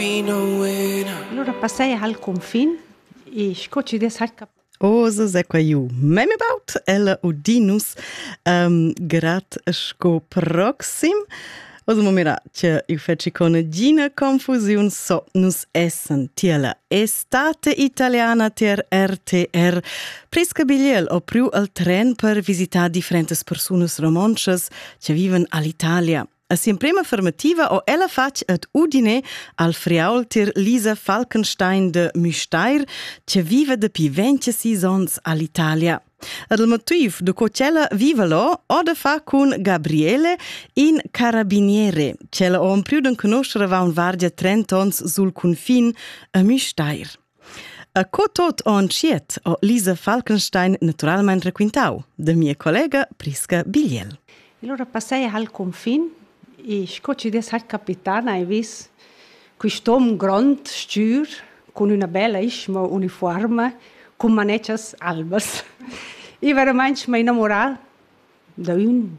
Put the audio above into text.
Allora passai al confin e sco ci des hat cap Ose se qua iu mem about ella Odinus um, grat sco proxim Osa momira che i feci con gina confusiun so nus essen tiela estate italiana ter RTR prisca biliel o priu al tren per visitar differentes persones romonces che viven all'Italia A si'emprema fermativa ho ella fatg ed udine al friaultir Lisa Falkenstein de Müstair, che viva dapi 26 ons all'Italia. Ed il motiv do co ch'ella viva lo ho da far cun Gabriele, in carabiniere, ch'ella ho ampriu d'en conoscere va unvargia trent ons sul cunfin a Müstair. E co tot on tschiet ho Lisa Falkenstein naturalmain raquintau da mia collega Prisca Bigliel. Il ora passai hal confin e sco ci des hat capitan hai vis quist'om grond stür con üna bella ischma uniforma con manetschas albas. I veramente mi innamorà da ün